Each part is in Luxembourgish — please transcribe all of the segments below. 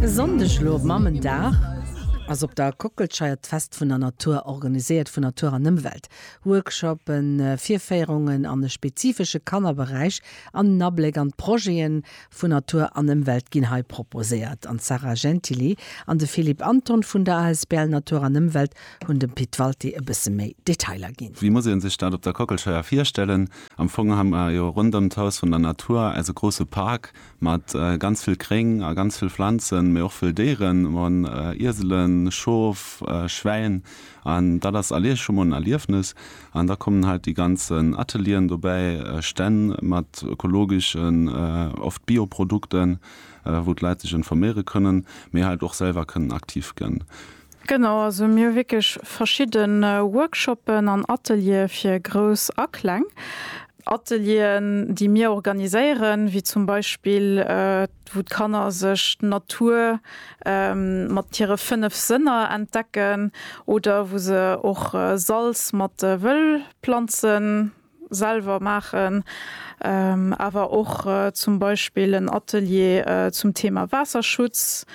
E Sonndeg elo op Mammendag ass op der Kockelscheier d'Fest vun der Natur, organiséiert vun Natur an Ëmwelt. Workshoppen, Virféierungen an e spezifesche Kannerberäich an en Abléck an d'Projete vun Natur an Ëmwelt ginn hei proposéiert an d'Sarah Gentili an de Philippe Anton vun der asbl Natur an Ëmwelt hunn dem Pit Walti e bësse méi Detailer ginn. Wéi muss ee sech dat op der Kockelscheier virstellen? Am Fong hu mer jo ronderëm d'Haus vun der Natur eise grousse Park mat ganz vill Gréng a ganz vill Pflanzen, mee och vëll Déieren, mer hunn Ieselen, Schof, Schwäin an dat ass all Ieche mol en Erliefnes. An da kommen halt déi ganzen Atelieren dobäi, Stänn mat ökologeschen, oft Bioprodukten, wou d'Leit sech informéiere kënnen, mee halt och selwer kënnen aktiv gënn. Genau, also mir hu wierklech verschidden Workshoppen an Ateliere fir Grouss a Kleng. Atelieren déi mir organiséieren, wéi zum Beispill wou d'Kanner sech d'Natur mat hire 5 Sënner entdecken oder wou se och Salz mat Wëllplanzen selwer maachen, awer och zum Beispill en Atelier zum Thema Waasserschutz,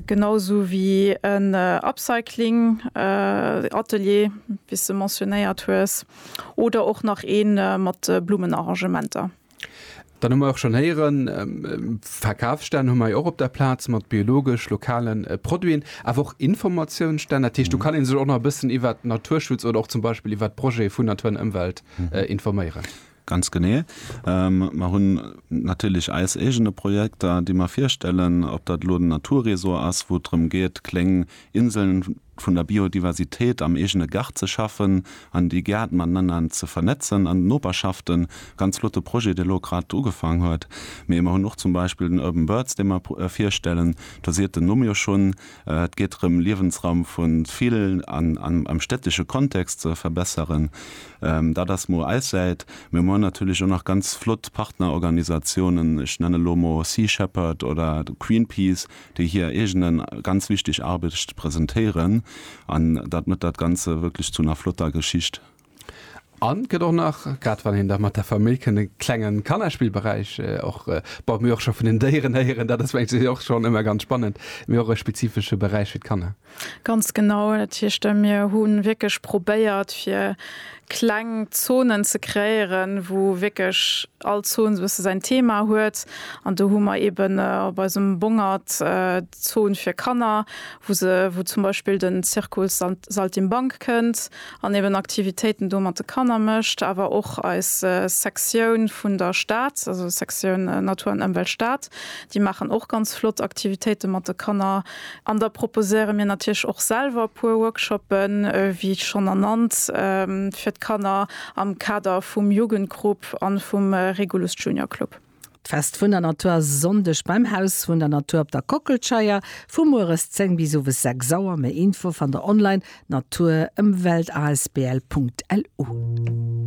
genau sou wéi en Upcycling Atelier, wéi s de mentionnéiert hues, oder och nach ee mat Blummenarrangementer. Dann hu mer och schonn héieren, Verkafsstänn hu mer jo och op der Plaz mat biologesch, lokale Produiten, awer och Informatiounsstänn. Dat heescht, do kann ee sech och nach e bëssen iwwert Naturschutz oder och zum Beispill iwwert d'Projete vun Natur an Ëmwelt informéieren. Ganz genee. Mer hunn natierlech eis eegene Projekter, déi mer virstellen, ob dat elo den Naturresort ass, wou et drëm geet, kléng Inseln vun der Biodiversitéit am eegene Gaart ze schaffen an déi Gäert matenanner ze vernetzen an d'Noperschaften, ganz flotte Projet, dee elo grad ugefaang huet. Mee mer hunn och zum Beispill den Urban Birds, dee mer virstellen, do siet den Numm jo schonn, et geet drëm Liewensraum vu vill am städtesche Kontext ze verbesseren. Dat ass mol eis Säit. Mee mer hunn natierlech och nach ganz flott Partnerorganisatiounen, ech nenne lo mol Sea Shepherd oder Greenpeace, déi hir eegene ganz wichteg Arbecht presentéieren an dat mëtt dat ganze wierklech zu ner flotter Geschicht. An et gëtt och nach, grad wann een da mat der Famill kënnt, e klenge Kannerspillberäich och, bon, mir och scho vun den Déieren héieren, dat ass mengen ech och schonn ëmmer ganz spannend, mee och e spezifesche Beräich fir d'Kanner. Ganz genau, dat heescht mir hu wierklech probéiert fir kleng Zonen ze kreéieren, wou wierklech all Zon esou e bësse säin Thema huet. An do hu mer eeben op eisem Bongert d'Zon fir Kanner, wou se wou zum Beispill den Zirkus Saltimbanque kënnt an eeben Aktivitéiten do mat de Kanner mécht. Awer och eis Sektioun vun der Stad, also Sektioun Natur an Ëmwelt Stad, déi maachen och ganz flott Aktivitéite mat de Kanner. An da proposéiere mir natierlech och selwer e puer Workshoppen, wéi schonn ernannt, fir d'Kanner am Kader vum Jugendgrupp a vum Regulus Junior Club. D'Fest vun der Natur ass e Sonndeg beim Haus vun der Natur op der Kockelscheier vu mueres 10 bis owes 6 Auer. Méi Info fannt der online, natur-emwelt-asbl.lu.